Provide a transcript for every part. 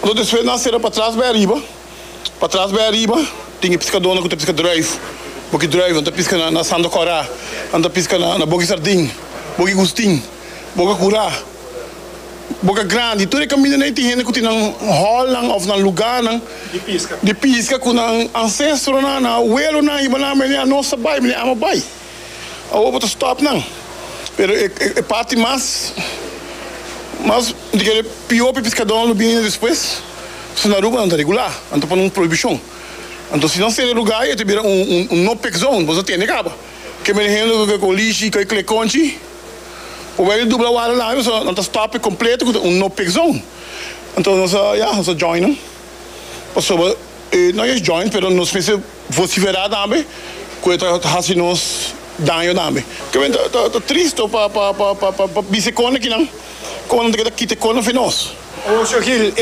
Lo despues nan sera patras bai ariba. Patras bai ariba tin e piskadónan ku ta piska drùif, boki drùif. Nan ta piska na Sando Kòrá, nan ta piska na Boki Sardin, Boki Gustin, Boka Kurá, Boka Grandi. Tur e kamindanan ei tin hende ku tin nan hòlnan òf nan lugánan di piska ku nan ansestronan, nan awelonan, ibanan, mené anos a bai, mené amo a bai. Awor bo ta stòp nan. Pero e parti mas mas di kere pió pa e piskadónan lo bini despues. Pasobra na Aruba nan ta regulá, nan ta pone un prohibishon. Anto si nan sera lugá ei ta bira un no pick zone, boso tende kaba. Ke benehendu ku ke kolishi, ku e klekonchi por bai di dubla wada labi, pasobra nan ta stòp e kompleto ku ta un no pick zone. Anto nos a ya, nos a join nan. pasobra no es joint pero nos mester vocifera tambe cu e ta haci nos daño tambe ta bien ta tristo pa pa bisti con akinan como nan ta keda kita e con afe nos. Ocio Gil,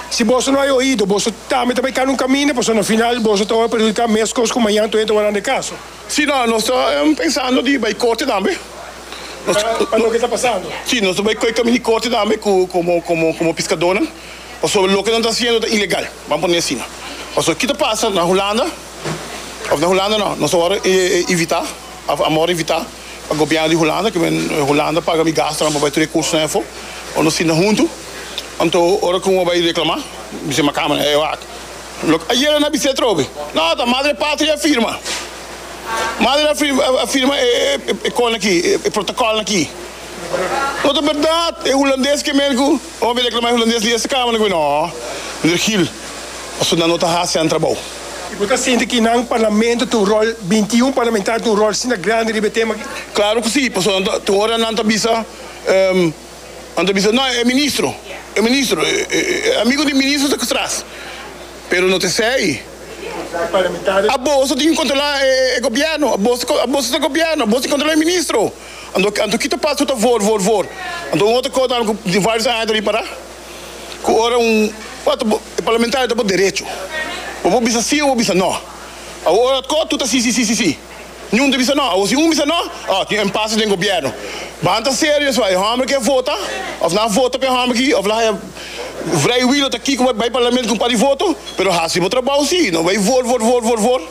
Si boso no hay oido boso tambe ta bay cana un camino pasobra na final boso ta wor perjudica mes cos cu mañan toyente wor a handi caso. Si no nos ta pensando di bay corte tambe pa loke ta pasando si nos ta bay cu e camino di corte tambe como como como piscadonan. Pasobra loke nan ta hasiendo ta ilegal, ban pone asina. Pasobra ki ta pasa na Hulanda, of na Hulanda no, nos a wòrdu invitá, of a wòrdu invitá pa gobièrnu di Hulanda, ke men Hulanda paga mi gastunan pa bai tré kursunan afó, ora nos sinta huntu. Anto ora ku bo bai reklamá, bisé mi kamer, e wak lo ke ayera nan a bis'é atrobe. No, ta Madre Patria a firma. Madre a firma, a firma e kona akí, e protokòlnan akí. No ta bèrdat, e hulandes ke men ku. Hopi a reklama e hulandes di esta kamer ku no, Meneer Gill, pasobra nan no ta hasi nan trabou. I bo ta sinti ki nan parlamento tin un ròl, binti i un parlamentario tin un ròl asina grandi riba e tema aki? Klaru ku si, pasobra nan ta, tin ora nan ta bisa, nan ta bisa, no, e ministro, e ministro, e amigu di ministro ta tras, pero no ta esei. E parlamentario. Abos ta tin ki kontrolá e gobièrnu, abos ta, abos ta gobierno, abos tin ki kontrolá e ministro. Anto anto kita pasa cu ta vor, vor, vor. Anto un otro cos tambe cu den varios aña ta bin para, cu ora un water bo e parlamentario ta bo derecho. Bo por bisa si o bo bisa no. Awor ora otro cos tur ta si, si, si, si, si. Niun ta bisa no. Awor si un bisa no, oh, tin impasse den gobierno. Ban ta serio so, e homber ke vota of nan a vota pa e homber aki of laga haña vrijwilog ta aki cu bai Parlamento cu un par di voto, pero haci bo trabao si, no bai vor, vor, vor, vor, vor.